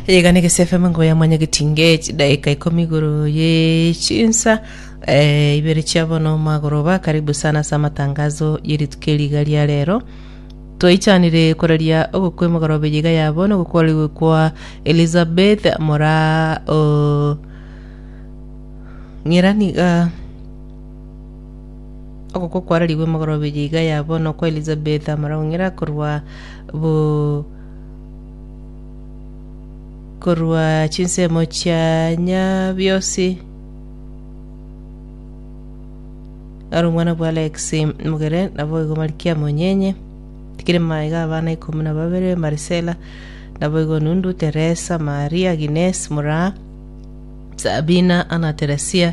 yegane gesefm ngo yamanya getinge chidaika ikomi igoro ye chinsa eh, ibere chia bono magoroba karibu sana ase amatangazo yerituko eriga ria rero twaichanire koraria ogokwa emogorobe yiga ya bono gokorigwe kwa elizabeth mora o ng'eraniga Okokwa kwararigwe emogoroba eye iga ya bono okwa Elizabeth amaraung'era korwa bu korwa chinsemo chia nyabiosi aro omwana bwa Alex Mugere naboigo Marikiamu Onyenye tikire maiga abana ikomi na babere Marisela naboigo Nundu Teresa Maria Agnes Muraa Sabina Anna Teresia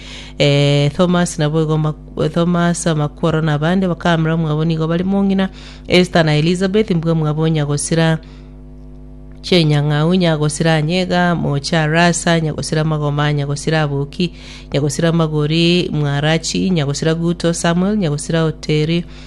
Eh, Thomas naboigo mak- Thomas amakworo na abande bakamera omwabo nigo bari mong'ina Esther na Elizabeth mbwe mwabo nyagosira chenyang'au nyagosira anyega mocha rasa nyagosira magoma nyagosira aboki nyagosira magori mwarachi nyagosira guto samuel nyagosira oteri